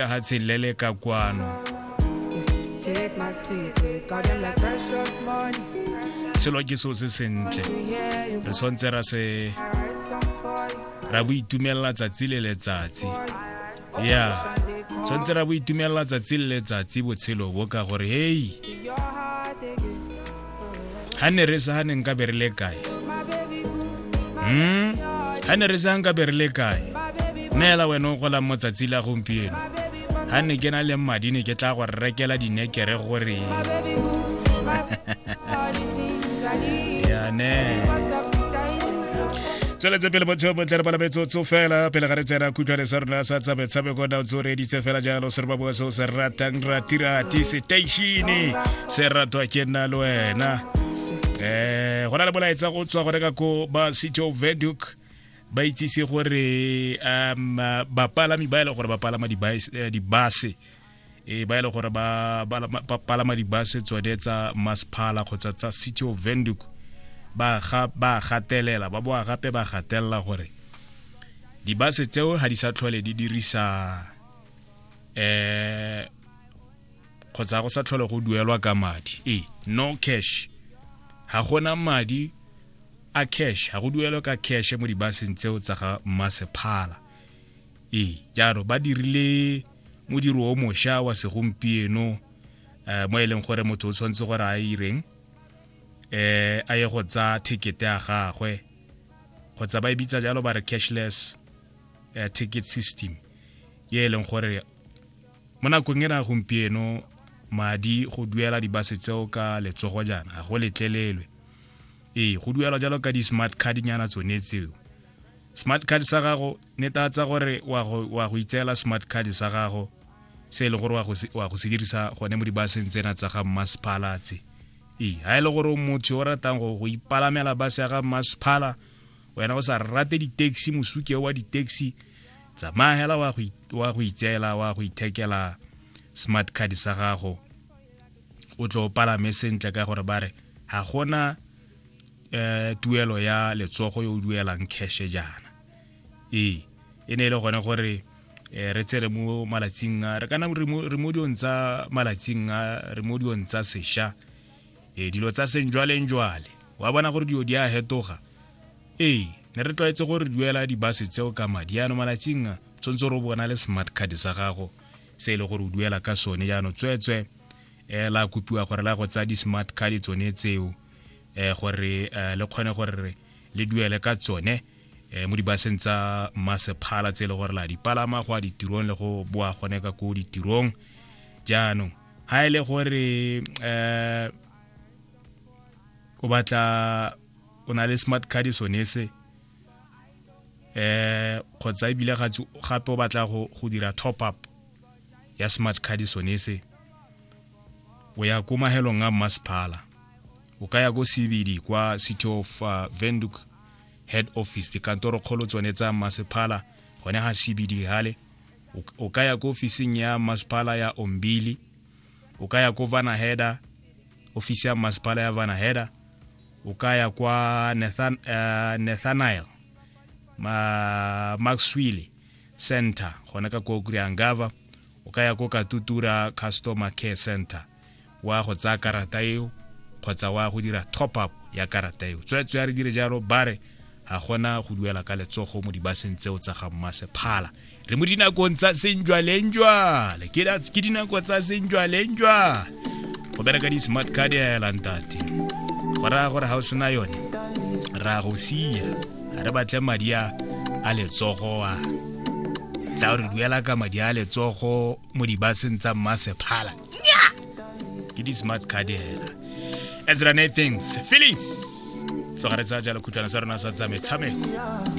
lehatshe le le ka kwano selo ke seo se sentle re tshwanetse ra se ra bo itumelela tsatsi le letsatsi ya tshwanetse ra bo itumelela tsatsi le letsatsi botshelo bo ka gore hei ha ne re sa ne nka be re le kae mm ha ne re sa nka be re le kae neela wena o golang mo tsatsi la gompieno ha ne ke na le madi ne ke tla go rekela dinekere gore yane tsweletse pele botshelo bontle re bala metsotso fela pele ga re tsena khutshwane sa rona sa tsa metshameko na ntse o reditse fela jalo se re ba bua se o se ratang ratirati seteishene se ratwa ke nna le wena um go na le molaetsa go tswa go reka ko ba city of veduk ba itsise gore um bapalami ba e leng gore ba palama dibase eh, e ba e le gore ba palama dibase tsone tsa masphala kgotsa tsa city of venduk ba gatelela ba boa gape ba gatelela gore dibase tseo ga di sa tlhole di dirisa eh kgotsa go sa tlhole go duelwa ka madi e no cash ga gona madi a cash ga go duelwa ka cash mo dibaseng tseo tsa ga masephala ee jalo ba dirile modiro o mošwa wa segompieno um mo e leng gore motho o tshwanetse gore a ireng um a ye go tsa ticket ya gagwe kgotsa ba e bitsa jalo ba re cashless uh, ticket system ye e leng gore mo nakong e na gompieno madi go duela dibase tseo ka letsogo jaana ga go letlelelwe ee go duelwa jalo ka di-smart card nyana tsone tseo smart card sa gago netatsa gore wa go itseela smart card sa gago se e le gore wa go se dirisa gone mo dibaseng tsena tsa ga mmasephala tse ee ga e le gore motho o ratang go go ipalamela base ya ga mmasephala wena o sa rate di-taxi mosuke wa di-taxi tsamaya hela wa go itseela wa go ithekela smart card sa gago o tlo palame sentle ka gore ba re ga gona eh tuelo ya letsogo yo o duelang cash jaana ee e ne e le gone gore eh, re tsere mo malatsing a re kana re mo diong tsa malatsing a re mo diong tsa sesha e dilo tsa seng jwaleng jwale wa bona gore dilo di a hetoga ee ne re tlwaetse gore re duela dibase tseo ka madi yaano malatsing a tshwanetse gore o bona le smart card sa gago se e le gore o duela ka sone jaanong tsweetswee eh, la kopiwa gore la go tsaya di-smart card tsone tseo eh, gore eh, le kgone gore le duele ka tsone eh, mo dibaseng tsa masephala tse e le gore la dipalama go a ditirong le go boa gone ka ko ditirong jaanong ga e le gore eh, o batla o na le smart card sone se eh kgotsa ebile gape o batla go dira top up ya smart card sone se o ya ko mahelong a mmasephala o ka ya ko cbd kwa city of uh, venduk head office dikantoro kgolo tsone tsa mmasephala gone ga cbd gale o ka ya ko ofising ya mmasephala ya ombili o ka ya ko vanaheda ofisi ya mmasepala ya vanaheda o ka ya kwa Nathan, uh, nathanael ma, maxwile center gona ka ko kuriangava o ka ya ko katutura customer care center wa go tsaya karata eo kgotsa wa go dira top up ya karata eo tsweetswe ya re dire jalo bare ga gona go duela ka letsogo mo dibaseng tseo tsa ga mmasephala re mo dinakong tsa senjwalenjwale ke dinako tsa senjwalenjwale go bereka di-smart card ya elantate go raya gore ga o sena yone ra go sia ga re batle madi a a letsogo a tla re duela ka madi a letsogo mo dibaseng tsa mmasephala ke di-smart card hela as run things feelings tloga re tsaya jalo khutlwana sa rona sa tsa metshameko